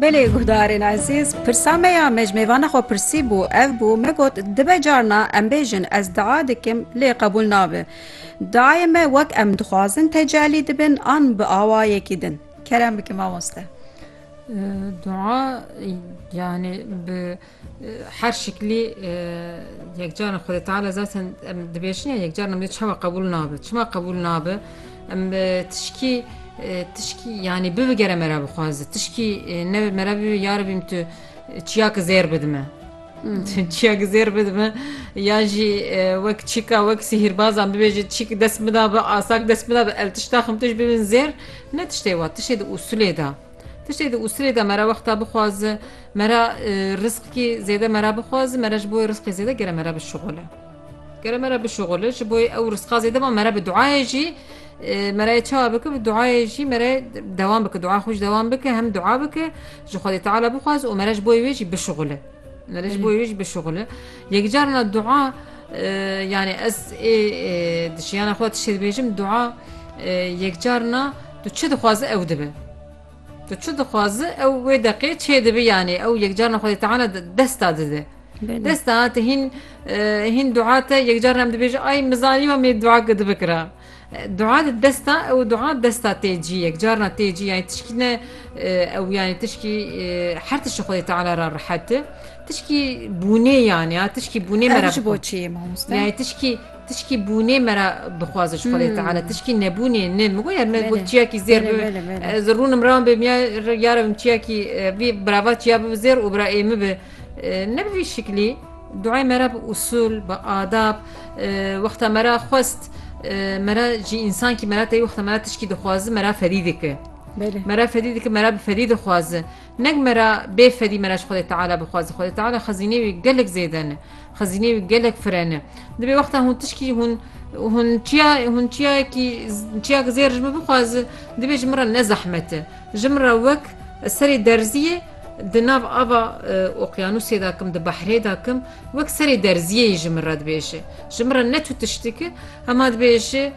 Belê guhdarên ezîz pirsa me ya me ji mêvana xwe pirsî bû ev bû me got dibe carna em bêjin ez dia dikim lê qebûl nabe diayê me wek em dixwazin tecelî dibin an bi awayekî din kerem bike mamoste. Dua yani bi Her şiklî yekcaran Xwedê Teala zaten em dibêjin ya yekcaran em dê çawa qebûl nabe. Çima qebûl nabe? Em tişkî tişkî yanî bibigere me re bixwaze. Tişkî ne me re bibê ya Rebîm tu çiyakî zêr bidime. Çiyakî zêr bidime ya jî wek çîka wek sihîrbazan bibêje çîkî dest bida bi asak dest bida bi el tişta xim tij bibin zêr ne tiştê wa tiştê di usulê de. Tiştê di usirê de mera wexta bixwazi mera rizqkî zêde mera bixwazi mera ji bo rizqê zêde gere mera bi şixule. Gere mera bi şixule ji bo ew rizqa zêde ma mera bi duayê jî merayê çawa bike bi duayê jî mere dewan bike dua xwe ji dewan bike hem dua bike ji xwedê teala bixwazi û mera ji bo wê jî bişixule. Mera ji bo wê jî bişixule. Yekcarina dua yani ez ê dişiyana xwe tiştê dibêjim dua yekcarina Tu çi dixwazi ew dibe. Tu çi dixwazi ew wê deqê çê dibe yanê ew yekcarna Xwedê Teala desta dide. Desta te hîn hîn dua te yekcarna em dibêje ay min zanî me mê dua ki dibikira. Dua di desta ew dua desta tê cî yekcarna tê cî yani tişkî ne ew yani tişkî her tişi Xwedê Teala ra rihete. Tişkî bûnê yani ya tişkî bûnê me re boçî mamoste. Yani tişkî Tişkî bûnê me re bixwaze ji Xwedê Teala tişkî nebûnê nin min got yer me got çiyakî zêr bibe ez rûnim rewan bê miya ya re bim çiyakî vî birava çiya bibe zêr û bira ê min bi ne bi vî şiklî duayê me re bi usûl bi adab wexta me re xwest me re jî însankî me re teyî wexta me re tişkî dixwaze me re fedî dike me re fedî dike me re bi fedî dixwaze nek me re bê fedî me re ji Xwedê Teala bixwaze Xwedê Teala xezînê wî gelek zêde ne Xezîneyê wî gelek fireh ne. Divê wexta hûn tişkî hûn hûn çiya hûn çiyayekî çiyayek zêr ji min bixwaze divê ji min re ne zehmet e. Ji min re wek serê derziyê di nav ava oqyanûsê de kim di behrê de kim wek serê derziyê yî ji min re dibêje. Ji min re ne tu tiştiki hema dibêje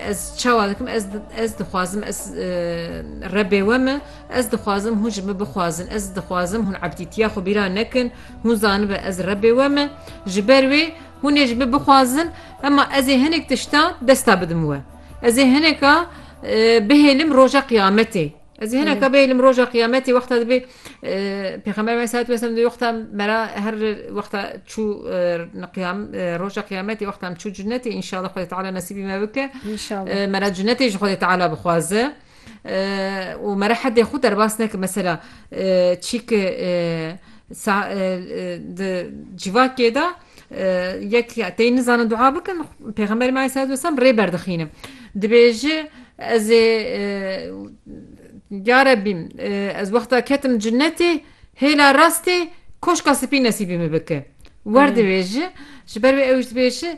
ez çawa dikim ez ez dixwazim ez rebê we me ez dixwazim hûn ji min bixwazin ez dixwazim hûn ebdîtiya xwe bîra nekin Hûn zanibe ez Rebê we me, ji ber wê hûn ê ji min bixwazin, emma ez ê hinek tiştan desta bidim we. Ez ê hineka bihêlim roja qiyametê. Ez ê hineka bihêlim roja qiyametê wexta dibê Pêxember Aleyh Selat Vesem dibê wexta mera her wexta çû qiyam roja qiyametê wexta em çû cunetê inşallah Xwedê Teala nesîbî me bike. Mera cunetê ji Xwedê Teala bixwaze. û me re hetê xwe derbas neke mesela çîkê di civakê de yek tê nizanin dua bikin pêxemberê me aleyhisselatü vesselam rê berdixînin dibêje ez ê ya Rebbî ez wexta ketim cinetê hêla rastê koşka spî nesîbî min bike werdibêje ji ber wê ew jî dibêje